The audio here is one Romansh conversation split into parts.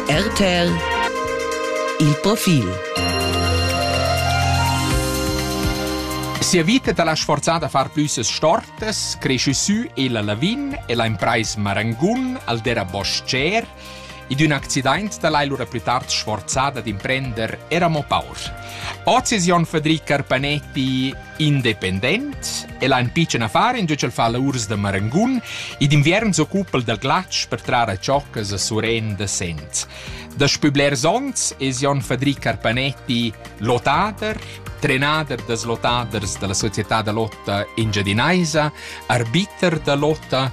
RTL Il profil Sia vita ta l'ha sforzata a far plüsses stortas, cresciu sü e la Lavin e la impraisa Marangun al dera boscher ed un accident da l'hai lura plü tard sforzada d'imprender era mo paur. Oz es Jon Federic Carpanetti independent. El ha in pitschen affar in tgel fa la urs da marangun e d'inviern s'occupa del glatsch per trar a cioccas a suren da sent. Daspü blers onns es Jon Fadric Carpanetti lotader, trenader das lotaders della società da lotta engiadinaisa, arbiter da lotta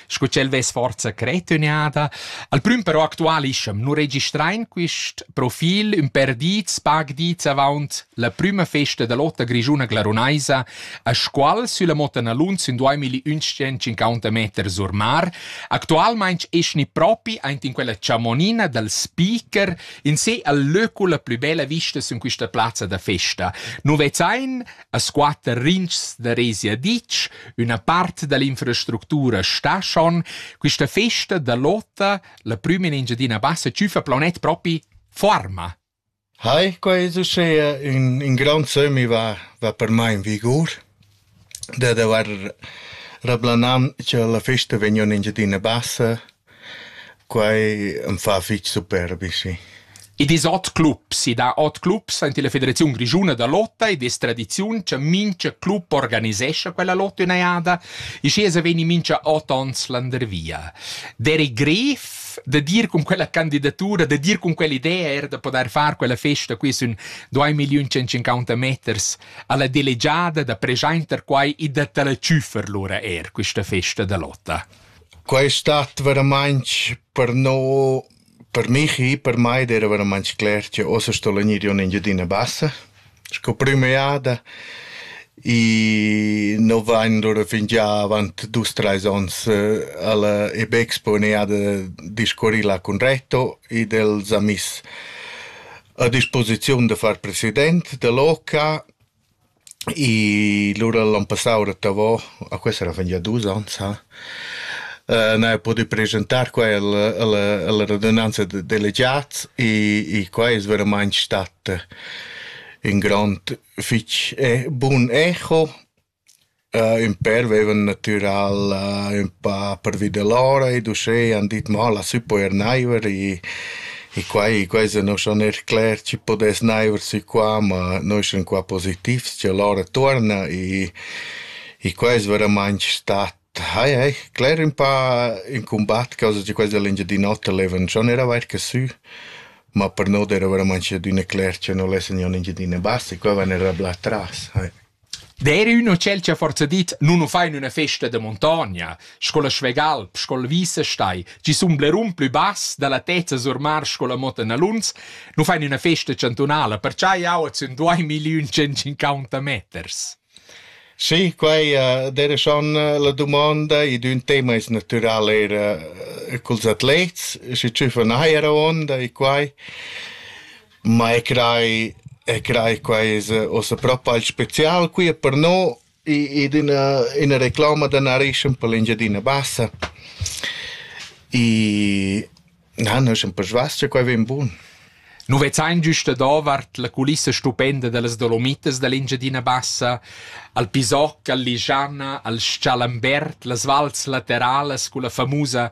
sco ch'el vess forza cretüniada. Al prüm però actualischa'm, nu registrain quist profil ün per dits, pag dits avaunt la prüma festa da lotta grischuna glarunaisa, a squal sülla Motta Nalunz in 2150 meter sur mar. Actualmaing eschni propi aint in quella chamonina dal speaker in se al löcula plü bella vista sün quista plazza da festa. Nu vezzain A squatter rintgs da Rezia ditg, üna part da l'infrastructura sta schon. Quista festa da lotta, la prüma in Engiadina Bassa, tschüfa planet propi forma. Hai, quai es uschea ün, ün grand sömmi va, va per mai in vigur, dad avair rablanà cha la festa vegna in Engiadina Bassa Quai am fa fich superbi, sì. Id es ot clubs, i dà ot clubs aint illa Federaziun grischuna da lotta ed es tradiziun cha mincha club organisescha quella lotta üna jada. Schi esa vegni mincha ot ons landervia. Derek Gref da dir cun quella candidatura, da dir cun quell'idea eir da podair far quella festa qui sün 2.150 meters a la delegiada da preschainter quai e da ta la tschüffer lura eir quista festa da lotta. Quai stat veramainch per no per mich, per mai ed eira veramainch cler che ossa sto gnir in Engiadina Bassa sco prüma jada e no vain lura fingià avant dus trais ons a la Ebekspo üna jada discurrì là cun Reto ed el s'ha miss a disposiziun da far president da l'OCA I lura l'on passau rettavò, a questa era fingià dus ons ha, n'haja pudü preschentar qua alla alla alla radunanza da delegats e qua es veramaing stat ün grond fich bun echo Ün pèr veivan natüral ün pa pervi da l'ora ed uschè han dit mo lassü poer naiver e e quai quai se no schon eir cler chi pudess naiver sü qua, ma noi sun qua positivs cha l'ora tuorna e e quai es veramaing stat hai hai cler ün pa ün cumbat causa cha quels da l'Engiadin'Ota levan schon eir averta sü, ma per no d'eira veramaing adüna cler cha no lessa gnir ün Engiadina Bassa e quai vain er rablà tras, hai. D'eira ün hotel cha forsa dit nu nu fa in üna festa da muntogna, sco la Schwegalp, sco la Wiesestein, chi sun blerun plü bass da la tezza sur mar sco la Motta Naluns, nu fa in üna festa chantunala, percià jau at sun duaimigliun centcinquanta meters. Sì, quai d'eira schon la dumonda. Id ün tema es natüral eir culs atlets, schi tschüffa neir avuonda e quai. Ma e crai e crai quai es uossa propa il spezial qui per no id üna üna reclama da narrischen per l'Engiadina Bassa. I na, no sun persvas cha quai vain bun. Nu vezzain güsta davart la culissa stupenda da las Dolomitas da l'Engiadina Bassa, al Pisoc, al Ligiana, al S-chalambert, las vals lateralas culla famusa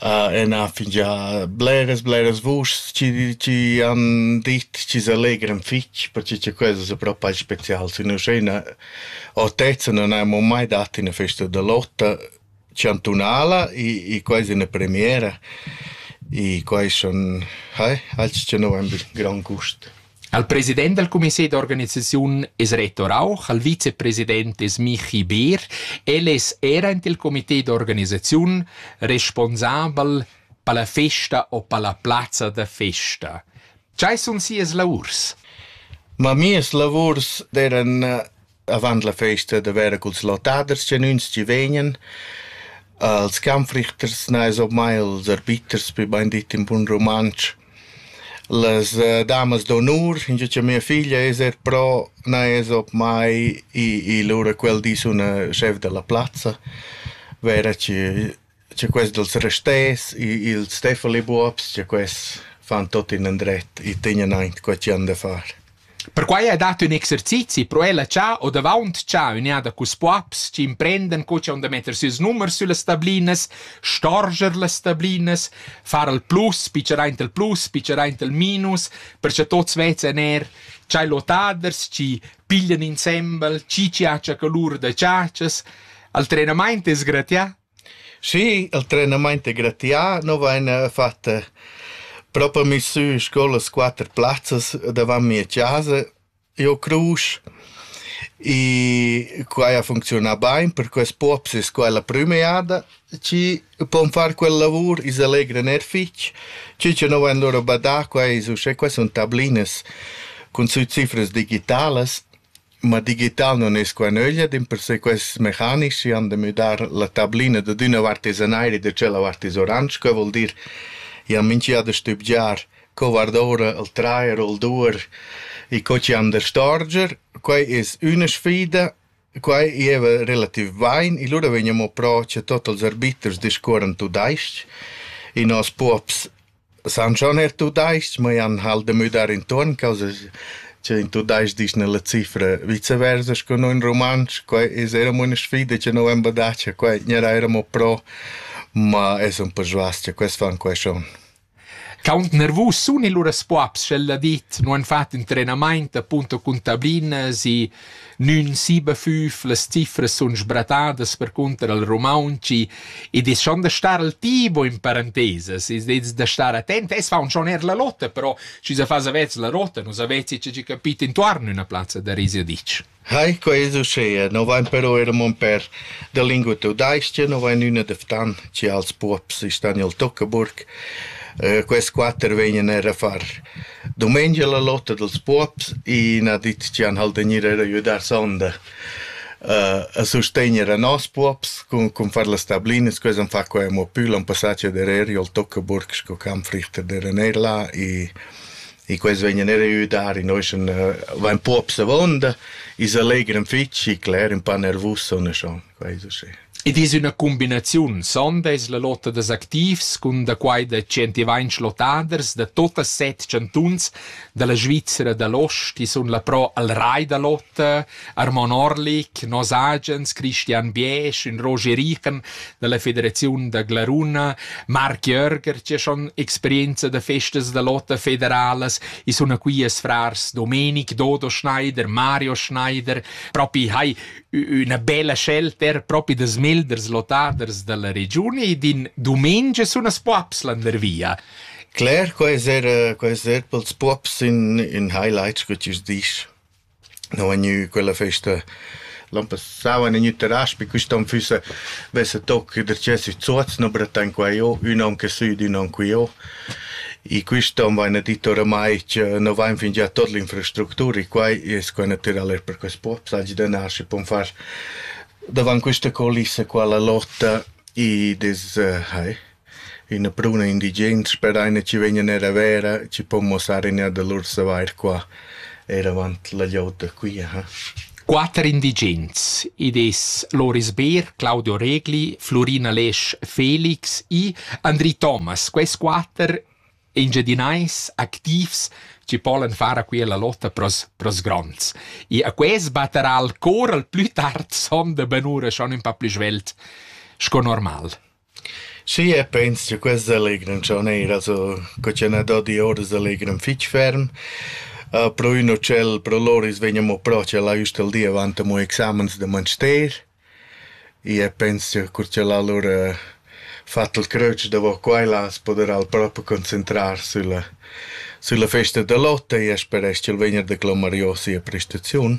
Ena fingià bleras bleras vuschs chi chi han dit chi s'allegran fich, perche cha quels es propai specials in uschena autezza non haimmo mai dat üna festa da lotta chantunala e e quai es üna premiera e quai sun eh, alch cha no vain be grand gust. Al president dal comité d'organisaziun es Reto Rauch, al vicepresident es Michi Beer. El es era int il comité d'organisaziun responsabel per la festa o per la plazza da festa. Tgei sun sias lavurs? Ma mias lavurs d'eran avant la festa da vera culs lottaders genuins chi vegnan. Als kampfrichters nais op mai els arbiters, wie bein dit in bun rumantsch. Las uh, damas d'onur, in gia mia figlia es er pro, nais op mai i, i lura quel dis una chef della plazza, vera chi Cha quest dals rasters, ils Steffeli-buobs, cha quests fan tuot inandret, i tegnan aint qua chi han da far. Perquai ha dat ün exercizi pro ella cha ho davaunt cha ün'eada culs buobs chi imprendan co chi han da metter sieus numers süllas stablinas, storger las stablinas, far al plus, pitschar aint al plus, pitschar aint al minus, per cha tuots vezan eir tschai lotaders chi piglian insembel, chi chi hacha colur da chatschas. Il trenamaint es gratià? Schi, il trenamaint è gratià. No vaina fat propa mi sü scoulas quatter plazzas davant mia chasa. Eu crus e quai a funcziunà bain, per quest pops es quai la prüma jada chi pon far quel lavur, i s'allegran er fich. Chi cha no vain lura badà, quai es uschè, quai sun tablinas cun sü cifras digitalas Ma digital non es qua nöglia, dimpersè quests mecanics chi han da müdar la tablina dad üna vart es an aer e da tschella vart es oransch, que voul dir ja minchia da stübgiar co guard'oura il trair o il duer e co chi han da storger. Quai es üna sfida, quai gieva relativ bain e lura vegniamo pro cha tuot ils arbiters discuorran tudais-ch e nos puobs San schon eir tudais-ch, ma jan halt da müdar intuorn causa cha in tudais-ch disch nella cifra viceversa scu no in rumantsch. Quai es eir amo üna sfida cha no vain badatscha, quai gnarà eir amo pro, ma es ün po svast cha quels fan quai schon. Quaunt nervus sun i lura spuabs sch'el ha dit, nu han fat ün trenamaint appunto cun tablinas i Nün sibafüf, las cifras sun sbratadas percunter al rumauntsch ed es schon da star al tibo in parentesas, es dets da star attent. Es faun schon eir la lotta, però schi sa fas avezs la rotta, nu savezzi che chi capit intuorn üna plazza da risiadic. Hai, quai es uschea, no vain però eir mon per da lingua tudais-cha, no vain üna da Ftan, chi als puobs stan i'l Tuccaburg. Äh, quest quatter vegnan eir a far Dumengia la lotta dals puobs, i n'ha dit chi han halt da gnir eir a güdar sonda a sustegner a nos puobs cun cun far las tablinas, quai s'han fat quai amo pü l'an passà cha dereri o'l Toccaburg sco camp Frichter d'eran eir là i i quels vegnan eir a güdar, i noschan vain puobs avonda, i s'allegran fich, i cleran pa nervus o ne schon. Id es üna cumbinaziun, sonda es la lotta dals activs cun da quai da tschentivainch lottaders da tuot set chantuns da la Svizra da l'ost chi sun là pro al Rai da lotta, Armon Orlik, nos agens, Christian Biesch, ün Roger Richen da la Federaziun da Glaruna, Marc Jörger chi ha schon experienza da festas da lotta federalas, i suna quias frars Domenic, Dodo Schneider, Mario Schneider, propi hai üna bella scelta propi da smelders lottaders dalla regiun ed in dumengia sun as poaps landervia. Claire, quai es era, quai es er pels puops in, in highlights che ti dici. No è gnü quella festa l'an passau an gnü terras pi quist'on füssa vessa toc der cesi zuoz no brettan qua jo, ün on che süd, ün on qui jo. I quist on vain dit oramai cha no vain fingià tuot l'infrastructura e quai es quai natüral eir per quest post, sagli da nar schi pon far davant quista culissa qua la lotta i des hai üna pruna indigens per aina chi vegnan eir a vera chi pon muossar in ja da lur savair qua. Eir avant la glieud da qui, aha. Quatter indigens. Id es Loris Beer, Claudio Regli, Flurina Lesch Felix e Andri Thomas. Quels quatter engiadinais activs chi polan far a quia la lotta pros, pros gronds. E a quels batterà il cor al plü tard son da benura schon ün pa plü svelt sco normal. Schi, e pens cha quests selegran cha ün eira so co ch'eu n'ha do dioura selegran fich ferm. Pro ün utschel pro lur i's vegn amo propi a la üst dal di avant amo examens da manster. I e pens cha cur cha l'ha lur fat il cröč davo qua e là as podera'l propi concentrar sülla sülla festa da lotta e ea speresch ch'el vegna da clomar jo sia prestaziun.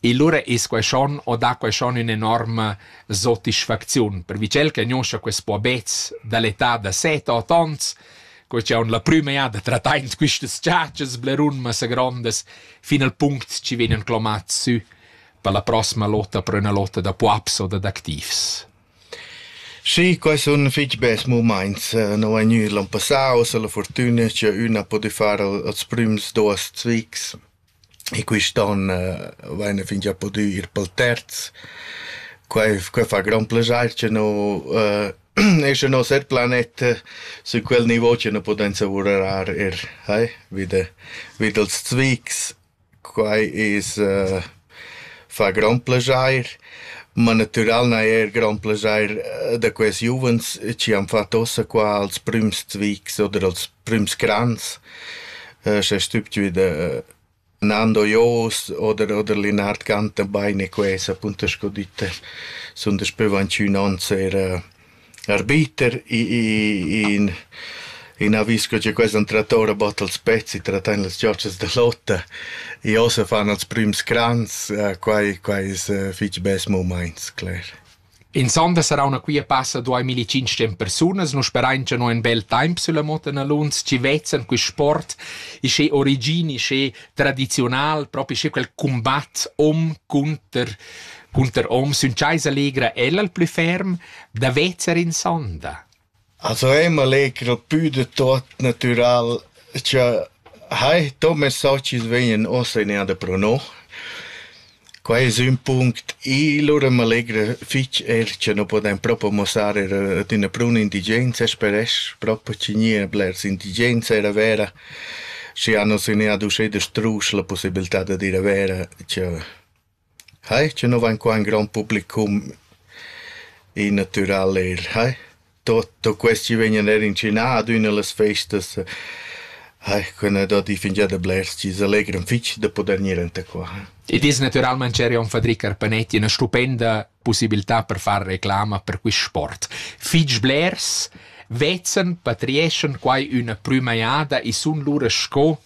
E lura es quai schon o dà quai schon ün'enorma sotisfacziun, per vicel che gnoscha quist puobets da l'età da set, ot ons, co cha haun la prüma jada trattaint quistas chatschas blerun massa grondas, fin al punct chi vegnan clomats sü per la prossima lotta per üna lotta da puaps o dad activs. Sì, quai sun fich bels mumaints. No è gnü l'an passà, uossa la furtüna cha üna ha pudü far als prüms duos zvics. E quist'on vaina fingià pudü ir pel terz. Quai quai fa grand plaschair cha no e scha nos er planet sün quel nivo cha nu pudem savurar eir eh vi da vi dals zviks. Quai es fa grand plaschair, ma natüral n'ha eir grand plaschair da quels giuvens chi han fat ossa qua als prüms zviks oder als prüms crans. Sce stübtgü da Nando Joos oder oder Linard Gantenbein e quesa appunto sco ditta sun daspö vantgnü ons eir arbiter in in avis co cha quels han trattà ora bod als pezzi, trattan las giotschas da lotta. I ossa fan als prüms crans, quai quai es fich bels mumaints, cler. In sonda sarauna quia passa duai milli-tschinch'ten persunas. Nus sperain cha no ün bel temp sülla moda naluns chi vezan quist sport isché origin, isché tradiziunal, propi isché quel cumbat hom cunter cunter hom. Sün chasa legra el al plü ferm da vezer in sonda. As vema leger pü da tuot natüral cha hai. Do messaggi vegnan uossa in eir da pro no. Quai es ün punct. I lura m'allegra fich eir cha nu podain propo muossar eir ad üna bruna indigenza speresch propo chi gnia blers indigens eir a Vera, schi hanos in eir ad uschè da struscher la pussibiltà dad ir a Vera cha Hai, che no vain qua ün grond publicum in natüral eir, hai. Tutto quest chi vegnan eir incinà ad üna da las festas, hai, quella da di fingià da blers chi s'allegran fich da pudair gnir anta qua. Id es natüralmaing cherion Fadri Carpanetti üna stupenda pussibiltà per far reclama per quist sport. Fich blers vezzen, patrieschan quai üna prüma jada e sun lura sco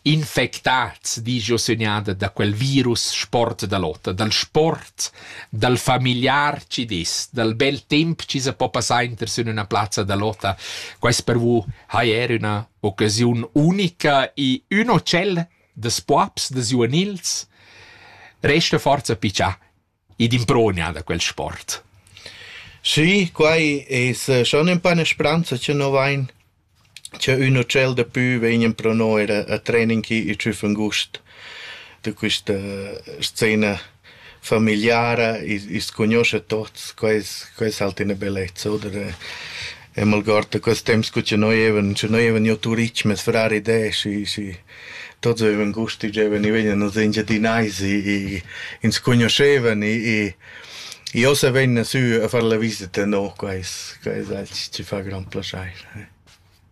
Infectads, disch jeu sögnada da quel virus sport da lotta, dal sport, dal familiar chi dess, dal bel temp chi sa po passar inter sün üna plazza da lotta. Quaist per vous hai eir üna occasiun unica e ün ocell da spuaps, da giuvenils. Resta forza pichà Id improgna da quel sport. Schi, quai es schon ün pa 'na spranza cha no vain, cha ün utschel dapü vegnan pro no eir a trening chi i tschüf ün gust da quista scena famigliara, i's cugnuoscha tuots, quai es quai es halt üna bellezza, oder? E m'algord da quels temps cu cha noi evan, scha noi evan jo turich, meis frar id es, schi schi. tots eran gust chi giovan, i vegnan els Engiadinais, i ins cugnuoschevan, i i ossa vegnan sü a far la visita, no, quais quais alch chi fa grand plaschair.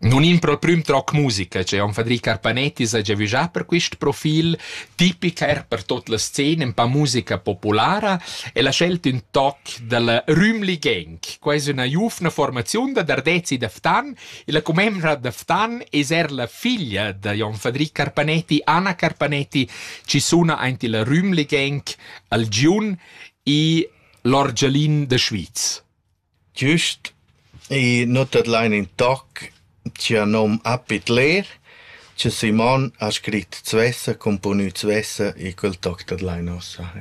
Non impro prüm troc musica, che on Fadri Carpanetti s'ha giavügià per quist profil, tipic eir per tot la scena, un pa musica populara, e l'ha scelt ün toc dalla Rümli Gang, quais üna giuvna formaziun da dardezzi da Ftan, Illa commembra da Ftan es eir la figlia da Jon Fadri Carpanetti, Anna Carpanetti, chi suna aint illa Rümligenk al Giun e l'orgialin da Schwyz. Giüst, i nu tadlain in toc chia nom Appit Lehr, che Simon ha scrit Zwessa, componü Zwessa e quel toc tadlain ossa.